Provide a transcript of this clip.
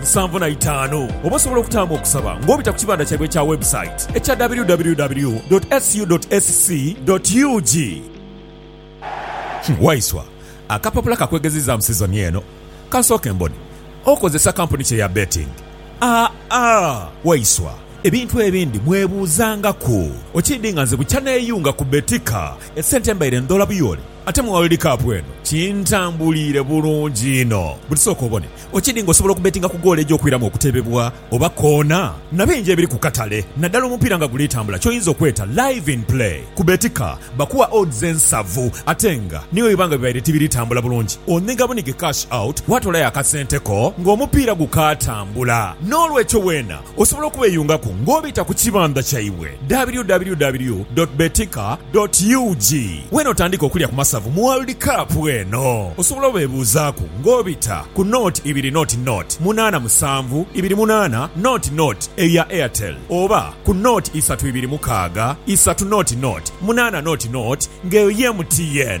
musanvu na itaanu. Oba osobola okutaamu okusaba ng'obita ku kibanda kyaibwe ekya webusayiti ekya www dot su dot sc dot ug. Waiswa, akapapula ka kwegezizaamu sizoni eno. Ka nsooke mbone. Okozesa kampuni ki eya betting? Aa, Waiswa, ebintu ebindi mwebuuzangaku. Okiidhi nga nze bukya neeyunga ku Betika, esente mbaire ndhola buyooli. Ate mu World Cup eno kintambuliire bulungi inho. Buti sooka obone, Ochidi nga osobola okubetinga ku goolo eja okwiramu okutebebwa oba koona na bingi ebiri ku katale naddala omupiira nga guli tambula ky'oyinza okweta Live in Play. Ku Betika bakuwa odds ensavu ate nga ni bwe biba nga bibaire tibiri tambula bulungi onhiga bunhige cash out watolayo akasente ko ng'omupiira gukaatambula. N'olwekyo weena Osobola okubeyungaku nga obita ku kibandha kyaibwe www dot betika dot ug wenotandiika okulya ku masavu mu World Cup eno. Osobola obebuuzaaku nga obita ku nought ibiri nought nought munaana musanvu ibiri munaana nought nought eya Airtel oba ku nought isatu ibiri mukaaga isatu nought nought munaana nought nought nga eyo ye MTN.